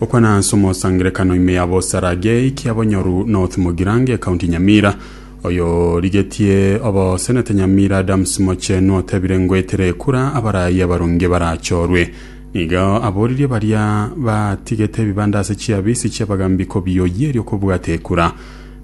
Okwana ase omosangerekano ime ya bosarage ikia Bonyoru North Mugirange County Nyamira. Oyorigetie obosenete Nyamira Adams Mochenu otebire ngoetera ekura abarayi abarunge barachorwe. Nigo aboririe baria batigete ebibanda ase chiabisi chiabagambi kobioyeria okobwata ekura.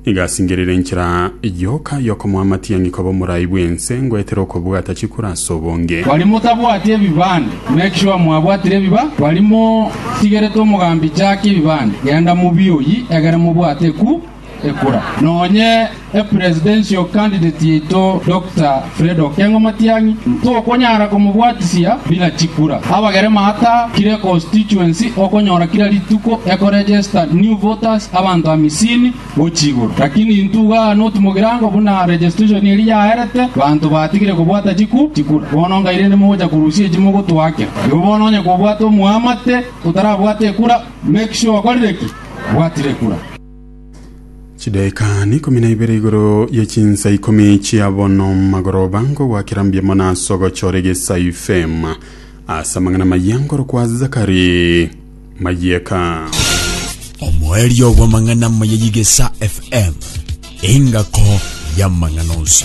Nigo asingerire enchera yoka y'okomoa amatiang'i koba omorai bw'ense, ngoetere okobwata chikura ase obonge. Bari motabwati ebibande, make sure mwabwatire ebiba bari motigerete omogambi jack ebibande genda mobioyi egere mobwate eku ekura nonye e presidential candidate yaito Doctor Fredo okeng'wa matiang'i, tokonyara komobwatisia buna chikura. Abagere maata kire constituency okonyora kira rituko eko register new voters abanto amisini gochia igoro. Lakini intwe iga aa not mogirango buna registration eria yaerete banto batigire kobwata chiku chikura. Bono ngai rende mogocha korusia echi mogotoake. Igo bono onye kobwate omoamate otarabwate ekura make sure okorire ki? Obwatire ekura. Chidaeka n'ikomi na ibere igoro ye chinsa ikomi chia bono magoroba nkogwakera mbiamo na ase ogochora egesaifema ase amang'ana maya nkorokwa Zakari Mayeka. omoerio bw'amang'ana amaya y'egesa FM, engako y'amang'ana onsi.